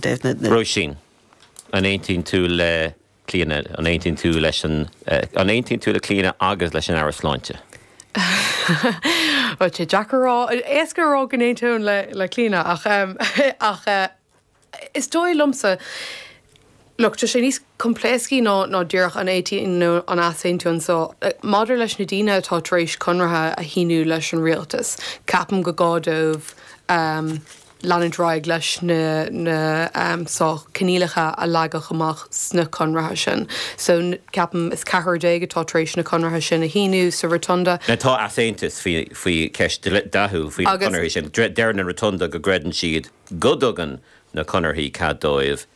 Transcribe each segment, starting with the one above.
Róisín, An aontaíonn tú le Clíona, an aontaíonn tú leis an, an aontaíonn tú le Clíona agus leis an Aire Sláinte? Bhuel, tá sé deacair a rá, éasca a rá go n-aontaím le, le Clíona ach eh, ach eh is dóigh liomsa, look, tá sé níos coimpléascaí ná, ná díreach an aontaíonn nó an easaontaíonn so eh maidir leis na daoine atá tar éis conraithe a shíniú leis an rialtas, ceapaim gur gá dóibh eh, leanúint ar aghaidh leis na coinníollacha a leagadh amach sna conraithe sin. So ceapaim is ceathrar déag atá tar éis na conraithe sin a shíniú sa Rotunda. Now tá easaontas faoi cheist Dáithí faoi na conarthaí sin. Deir an Rotunda go gcreideann siad go dtugann na conarthaí cead dóibh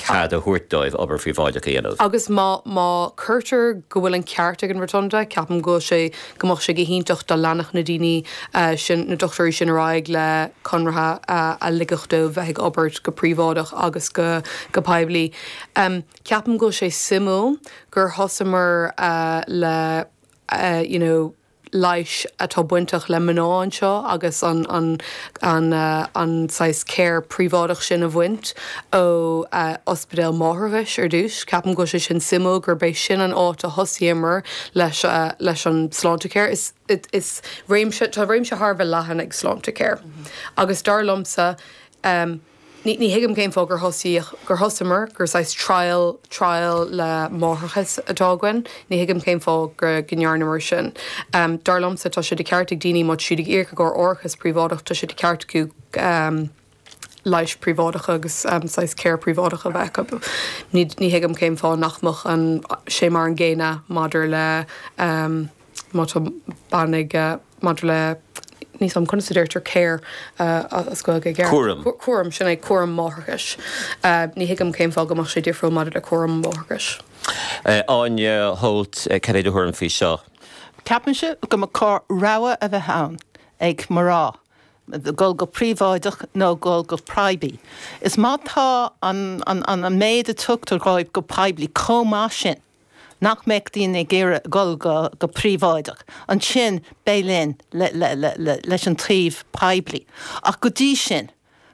cead a thabhairt dóibh obair phríobháideach a dhéanamh. Agus má, má chuirtear go bhfuil an ceart ag an Rotunda, ceapaim go bhfuil sé, go mbeadh sé ciontach dá leanfadh na daoine sin, na dochtúirí sin ar aghaidh le conraithe a ligfeadh dóibh bheith ag obair go príobháideach agus go, go poiblí. Ceapaim go bhfuil sé suimiúil gur thosamar le, you know, leighis atá bainteach le mná anseo agus an saghas care príobháideach sin a bhaint ó ospidéal máithreachais ar dtús. Ceapaim go bhfuil sé sin suimiúil, gurb é sin an áit a thosaíomar leis an Sláintecare. Is réimse, tá réimse thar a bheith leathan ag Sláintecare agus dar liomsa, Ní thuigim cén fáth gur thos, gur thosamar, gur saghas trial, trial le máithreachas atá againn. Ní thuigim cén fáth go ndearnamar sin. Dar liomsa tá sé de cheart ag daoine má tá siad ag íoc i gcomhair árachas príobháideach, tá sé de cheart acu leighis príobháideach agus saghas care príobháideach a bheith acu. Ní thuigim cén fáth nach mbeadh sé mar an gcéanna maidir le Má tá bean ag maidir le níos am conas a deirtear care as Gaeilge i gceart? Cúram. Cúram, sin é, cúram máithreachais. Ní thuigim cén fáth go mbeadh sé difriúil maidir le cúram máithreachais. Áine Holt, cad é do thuairim faoi seo? Ceapaimse go mba chóir rogha a bheith ann ag mná dul go príobháideach nó dul go poiblí. Is má tá an méid atá tugtha dhóibh go poiblí chomh maith sin. nach mbeadh daoine ag iarraidh a dhul go príobháideach, ansin beidh linn leis an taobh poiblí. Ach go dtí sin,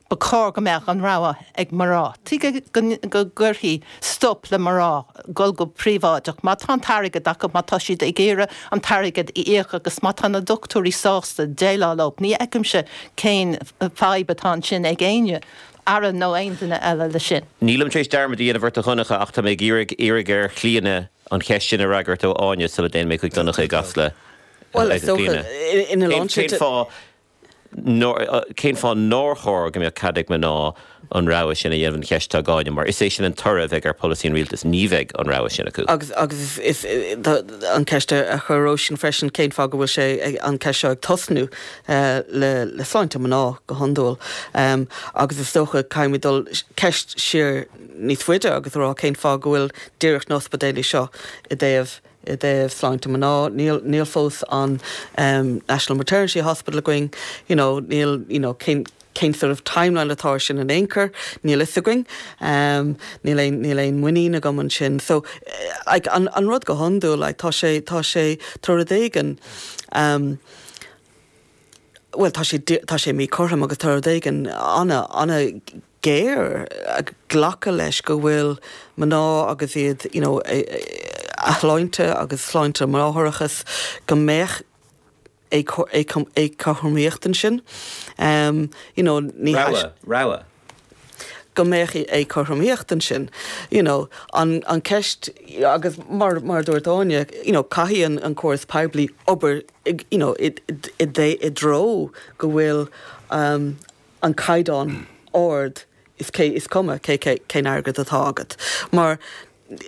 ba chóir go mbeadh an rogha ag mná. Tuige go gcuirfí stop le mná dhul go príobháideach má tá an t-airgead acu, má tá siad ag iarraidh an t-airgead a íoc agus má tá na doctúirí sásta déileáil leo? Ní fheicimse cén fhadhb atá ansin ag éinne. Aire nó aon duine eile leis sin. Nílim tar éis dearmad a dhéanamh ort a Dhonncha ach tá mé ag iarraidh iarraidh ar Chlíodhna an cheist sin a fhreagairt ó Áine sula dtéann mé chuig Donncha i gCasla. Bhuel, is dócha ina lán slite. Cén fáth nár cén fáth nár chóir go mbeadh cead ag mná an rogha sin a dhéanamh an cheist atá ag Áine mar is é sin an toradh a bheidh ar pholasaí an rialtais, ní bheidh an rogha sin acu. Agus agus is an cheist a chuir Róisín freisin, cén fáth go bhfuil sé an ceist seo ag tosnú? le sláinte mná go hiondúil agus is dócha caithfimid dul ceist siar níos faide agus a rá cén fáth go bhfuil díreach na hospidéilí seo i dtaobh i dtaobh sláinte mná níl níl fós an national maternity hospital againn you know níl you know cén cén sort of timeline atá ar sin in aon chor níl a fhios againn um, níl aon níl aon muinín agam ansin so like, an, an rud go hiondúil like, tá sé tá sé tá rud éigin um, Bhuel, tá sé, tá sé míchothrom agus tá rud éigin an-an-ghéar glacadh leis go bhfuil mná agus iad, you know, a shláinte agus sláinte máithreachais, go mbeadh éagothromaíocht ansin. You know, ní. Rogha, rogha. go mbeadh éagothromaíocht ansin. You know, an an ceist agus mar mar a dúirt Áine, you know, caithfidh an an córas poiblí obair ag, you know, i i dté i dtreo go bhfuil um an caighdeán ard is cé is cuma cé cé cén airgead atá agat. Mar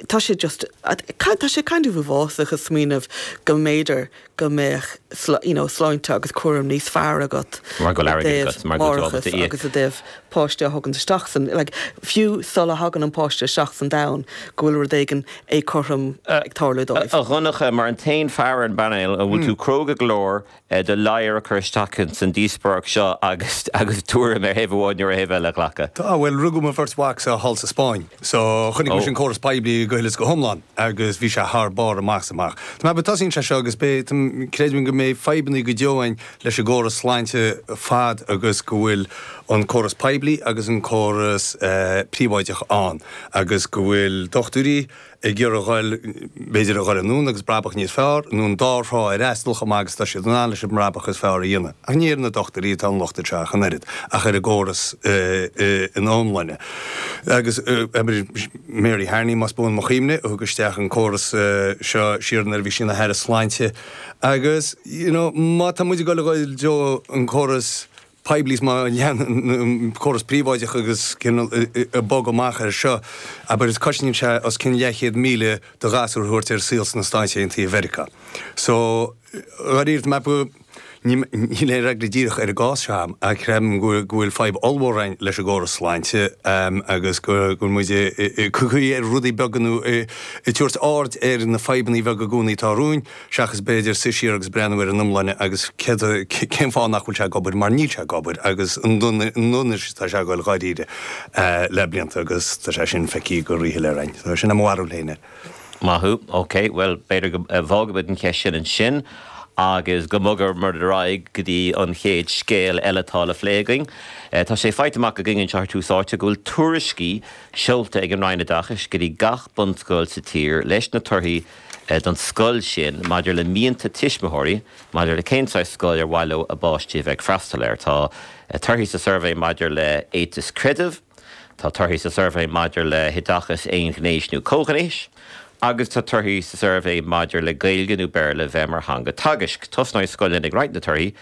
Tá sé just, tá sé kind of uafásach a smaoineamh go mb'fhéidir go mbeadh you know sláinte agus cúram níos fearr agat Mar go bhfuil airgead agat, i dtaobh máithreachais. agus i dtaobh páiste a thógaint isteach san, like, fiú sula thagann an páiste isteach san domhan go bhfuil rud éigin éagothrom ag tarlú dóibh. A Dhonncha, mar an t-aon fear ar an bpainéal, an bhfuil tú cróga go leor le do ladhar a chur isteach ins an díospóireacht seo agus agus tuairim ar thaobh amháin nó ar thaobh eile a ghlacadh. Tá, bhuel, rugadh mo bheirt mhacsa thall sa Spáinn, so chonaic mise an córas poiblí go huile is go hiomlán agus bhí sé thar barr amach is amach. Tá mé ag, tosaíonn sé seo agus beidh, tá, creidim go mbeidh fadhbanna go deo againn leis an gcóras sláinte fad agus go bhfuil an córas poiblí agus an córas, eh, príobháideach ann agus go bhfuil dochtúirí, ag iarraidh a dhul, b'fhéidir, a dhul anonn agus brabach níos fearr, nó an dá thrá a fhreastal chomh maith agus atá siad in ann leis an mbrabach is fearr a dhéanamh. Ach ní ar na dochtúirí atá an locht anseo ach an oiread, ach ar an gcóras ina iomláine. Agus Mary Harney, más buan mo chuimhne, a thug isteach an córas seo siar nuair a bhí sí ina haire sláinte. Agus, you know, má tá muid ag dul a dhul i dtreo an córas poiblí is má leanann muid an córas príobháideach agus cineál ag bogadh amach air seo, abair, is cosnaíonn sé os cionn leathchéad míle do ghasúr a thabhairt ar saol sna Stáite Aontaithe Mheiriceá. So, dháiríre, mé ba, níl aon fhreagra díreach ar an gcás seo agam ach creidim go bhfuil fadhb ollmhór ann leis an gcóras sláinte agus go bhfuil muid ag caoi faoi rudaí beaga nó ag tabhairt aird ar na fadhbanna bheaga i gcónaí atá romhainn. seachas b'fhéidir suí siar agus breathnú ar an iomláine agus céard a, cén fáth nach bhfuil sé ag obair mar níl sé ag obair agus an ndon, i ndonas atá sé ag goil dháiríre le blianta agus tá sé sin feicthe go rí-shoiléir againn. Tá, sin é mo bharúil féin air. Maith thú. Ok, bhuel, b'fhéidir go bhfágfaimid an cheist sin ansin agus go mbogfaimid ar aghaidh go dtí an chéad scéal eile atá le phlé againn. Tá sé faighte amach againn anseo ar Tús Áite go bhfuil tuairiscí seolta ag an Roinn Oideachais go dtí gach bunscoil sa tír leis na torthaí don scoil sin, maidir le mianta tuismitheoirí maidir le cén saghas scoil ar mhaith leo a bpáistí a bheith ag freastal air. Tá torthaí sa suirbhé maidir le éiteas creidimh, tá torthaí sa suirbhé maidir le hoideachas aon-ghnéis nó comhghnéis agus tá torthaí sa suirbhé maidir le Gaeilge nó Béarla bheith mar theanga teagaisc. Tosnóidh scoileanna ag roinnt na torthaí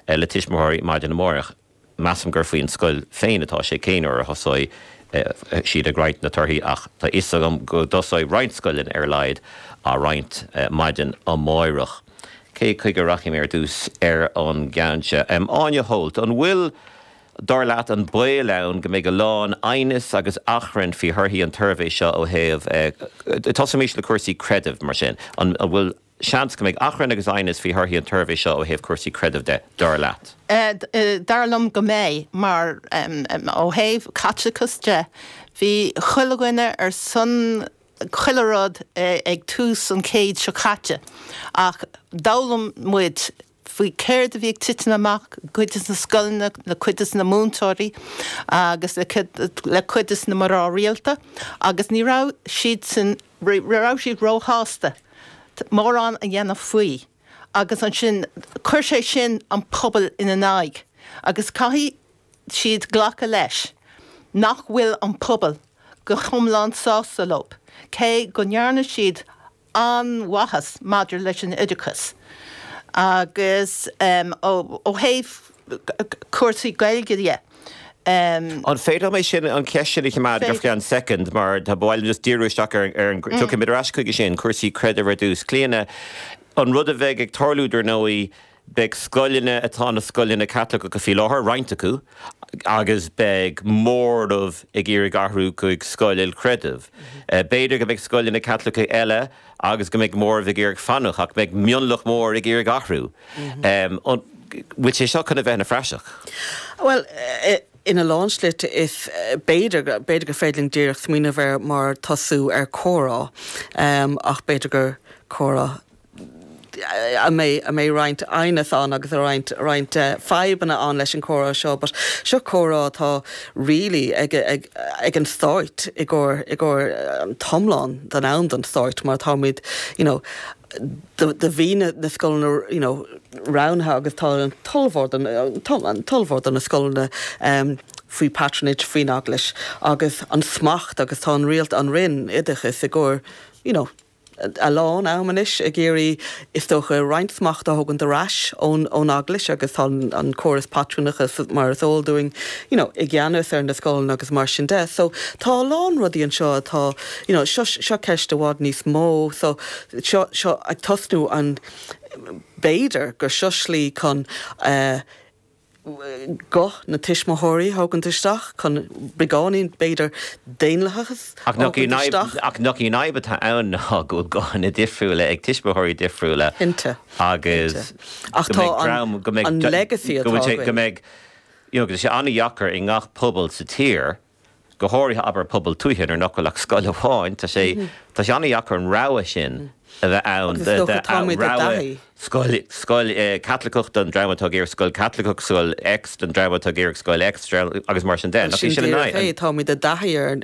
le tuismitheoirí maidin amáireach. Measaim gur faoin scoil féin atá sé cén uair a thosóidh siad ag roinnt na torthaí ach tá fhios agam go dtosóidh roinnt scoileanna ar a laghad á roinnt maidin amáireach. Cé chuige a rachaidh mé ar dtús ar an gceann seo? Áine Holt, An bhfuil, dar leat, an baol ann go mbeidh a lán aighneas agus achrainn faoi thorthaí an tsuirbhé seo ó thaobh, tosóimís le cúrsaí creidimh mar sin, an bhfuil, Seans go mbeidh achrann agus aighneas faoi thorthaí an tsuirbhé seo ó thaobh cúrsaí creidimh de, dar leat. Dar liom go mbeidh, mar ó thaobh Caitliceachas de, bhí chuile dhuine ar son chuile rud ag tús an chéid seo caite ach d'fhoghlaim muid faoi céard a bhí ag titim amach le cuid de na scoileanna, le cuid de na múinteoirí agus le cuid de na mná rialta agus ní raibh siadsan, ní raibh siad róshásta mórán a dhéanamh faoi agus ansin chuir sé sin an pobal ina n-aghaidh agus caithfidh siad glacadh leis nach bhfuil an pobal go hiomlán sásta leo cé go ndearna siad a an-mhaitheas maidir leis an oideachas agus ó thaobh cúrsaí Gaeilge dhe. An féidir liom sin, an cheist sin a choimeád ar feadh soicind mar ba mhaith liom just díriú isteach ar an, tiocfaidh mé ar ais chuige sin, cúrsaí creidimh ar dtús. Clíodhna, An rud a bheidh ag tarlú dar ndóigh, Beidh scoileanna atá ina scoileanna Caitliceacha faoi láthair, roinnt acu, agus beidh móramh ag iarraidh athrú chuig scoil ilchreidimh. B'fhéidir go mbeidh scoileanna Caitliceacha eile agus beidh móramh ag iarraidh fanacht, ach beidh mionlach mór ag iarraidh athrú. An bhfuil sé seo chun a bheith ina phraiseach? Bhuel, ina lán slite is b'fhéidir. B'fhéidir gur féidir linn díreach smaoineamh air mar tosú ar comhrá, ach b'fhéidir gur comhrá. a mbeidh roinnt aighneas ann agus roinnt roinnt fadhbanna ann leis an comhrá seo but seo comhrá atá really ag ag ag an stáit i gcomhair i gcomhair an t-iomlán den am don stáit mar táimid you know do do bhí na na scoileanna you know roghnaithe agus tá an tulmhór don an tulmhór do na scoileanna um faoi patronage faoin eaglais agus an smacht agus tá an rialt an Roinn oideachas i gcomhair you know a lán am anois ag iarraidh, is dócha, roinnt smacht a thógaint ar ais ón Eaglais agus tá an córas pátrúnachta mar is eol dúinn, you know, i gceannas ar na scoileanna agus mar sin de. So, tá a lán rudaí anseo atá, you know, seo, seo ceist i bhfad níos mó. So, seo, seo ag tosnú an, b'fhéidir gur seo slí chun, eh, guth na tuismitheoirí a thógaint isteach chun beagáinín, b'fhéidir, daonlathas a thógaint isteach. Ach nach í an fhadhb atá ann ná go bhfuil guthanna difriúla ag tuismitheoirí difriúla agus go mbeidh dream, go mbeidh, go bhfuil sé, go mbeidh, you know, go mbeidh sé an-dheacair i ngach pobal sa tír. go háirithe abair pobal tuaithe nuair nach bhfuil ach scoil amháin, tá sé, tá sé an-deacair an rogha sin a bheith ann. Agus is dócha tá muid i dtaithí. Scoil, scoil Chaitliceach don dream atá ag iarraidh scoil Chaitliceach, scoil X don dream atá ag iarraidh scoil X, agus mar sin de. Tá muid i dtaithí ar an.